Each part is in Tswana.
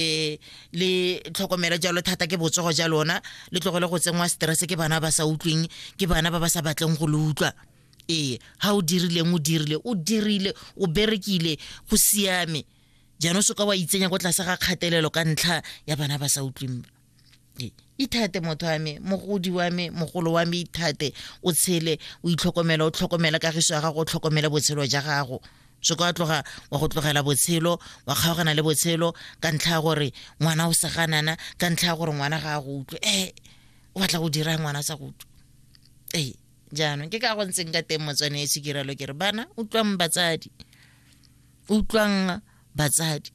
um le tlhokomelo jalo thata ke botsogo ja lona le tlogele go tsenngwa stress ke bana ba sa utlweng ke bana ba ba sa batleng go le utlwa ee ga o dirileng o dirile o dirile o berekile go siame jaanong se ka wa itsenya ko tlase ga kgatelelo ka ntlha ya bana ba sa utlweng ithate motho wa me mogodi wa me mogolo wa me ithate o tshele o itlhokomela o tlhokomela kagiso ya gago o tlhokomela botshelo ja gago so ka tloga wa go tlogela botshelo wa kgaogana le botshelo ka ntlha ya gore ngwana o seganana ka ntlha ya gore ngwana ga a go utlwe e eh, o batla go dira ngwana sa go utlwe ee eh, jaanong ke ka go ntseng ka teng motswane e sekirelo ke re bana utlwang batsadi utlwang batsadi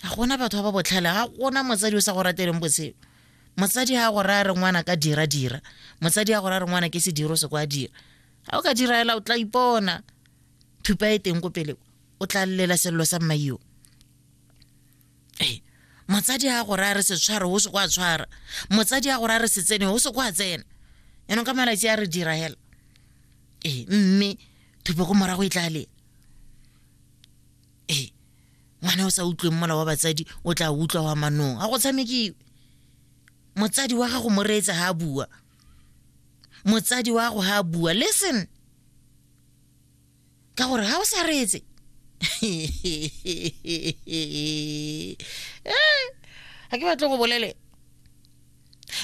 ga gona batho ba ba botlhale ga gona motsadi o sa go rateleng botshelo motsadi ga go raya re ngwana ka dira dira motsadi ga go raya re ngwana ke sediro se kwa dira ga o ka dira ela o tla ipona thupa e teng ko pele o tla llela selelo sa mmaio ee motsadi ga go raya re se tshware o se kwa tshwara motsadi ga go raya re se tsene o se kwa tsena yanong ka malatsi a re dira hela ee mme thupa ko morago e tla lela ee ngwana o sa utlweng mola wa batsadi o tla utlwa wa manong ga go tshamekiwe motsadi wa gago mo reetse ga a bua motsadi wa gago ga a bua listen ka gore ga o sa reetse ga ke batle go bolele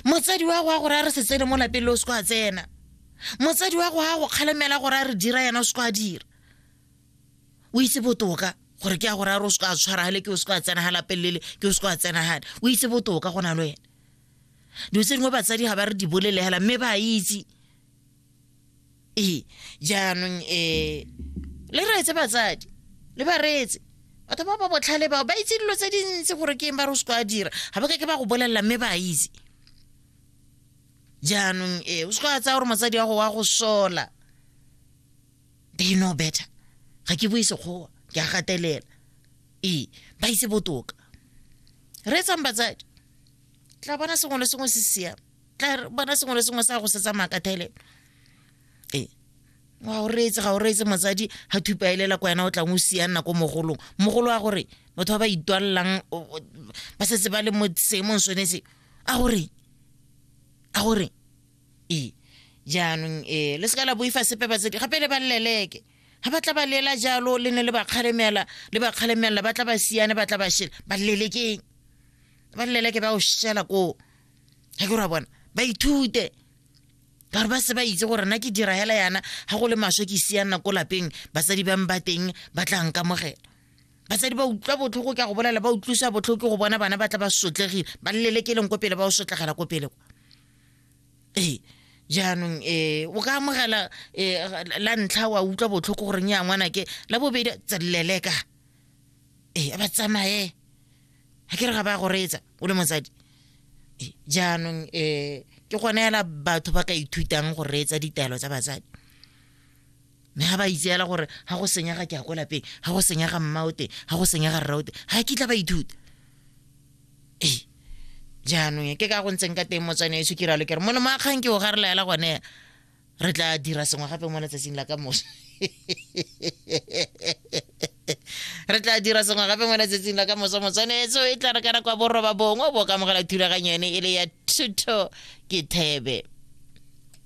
motsadi wa go a gore a re se tsene mo lapeng le o se ko a tsena motsadi wa go a go kgalemela gore a re dira yena o se ko a dira o itse botoka gore ke ya go raro o se ka tshwaragale ke o se ka tsena ga lapelele ke o se ka tsena gane o itse botoka go na le wena dilo tse dingwe batsadi ga ba re di bolelegela mme ba itse ee jaanong um le reetse batsadi le ba reetse batho ba ba botlhale bao ba itse dilo tse dintsi gore ke eng ba re o se ka dira ga ba ka ke ba go bolelela mme ba itse jaanong ee o se ka tsaya gore motsadi wa go wa go sola they know better ga ke bue sekgowa ke a gatelela ee ba itse botoka re etsang batsadi tla bona sengwe le sengwe se siame tla bona sengwe le sengwe sa go se tsamaya ka thelelo ee ga o reetse ga o reetse motsadi ga thupa elela ko wena o tlang o sia nna ko mogolong mogolo wa gore batho ba ba itwalelang ba setse ba le mo seemong sone se a gore a gore e jaanong e le seka la boifa sepe batsadi gape le ba leleke ga ba tla ba lela jalo le ne le ba kgalemela le ba kgalemelela ba tla ba siane ba tla ba shela ba lelekeng ba leleke ba o shela koo ga ke ra bona ba ithute ka gore ba se ba itse gore nna ke dira hela yana ga go le maswe ke sia nna ko lapeng basadi bang ba teng ba tla nkamogela basadi ba utlwa botlhoko ke a go bolela ba utlwisa botlhoko ke go bona bana ba tla ba sotlegile ba lelekeleng ko pele ba o sotlegela ko pele kwa ee jaanong ee o ka amogela ee la ntlha wa utlwa botlhoko goreng ya ngwana ke la bobedi tselele ka ee a ba tsamaye ga ke re ga ba go reetsa o le motsadi jaanong ee ke gone fela batho ba ka ithutang go reetsa ditaelo tsa batsadi mme ga ba itseela gore ga go senyega ke ya ko lapeng ga go senyega mmao teng ga go senyega rrao teng ga kitla ba ithuta ee jaanong ke ka go ntseng ka teng motswane eso ke ralo ke re molemo a kgang ke o ga re laela gone re tla dira sengwe gape mo letsatsing la ka moso re tla dira sengwe gape mo letsatsing la ka moso motswanetso e tla re kana kwa borroba bongwe bo kamogela thulaganyo ene e le ya thuto ke thebe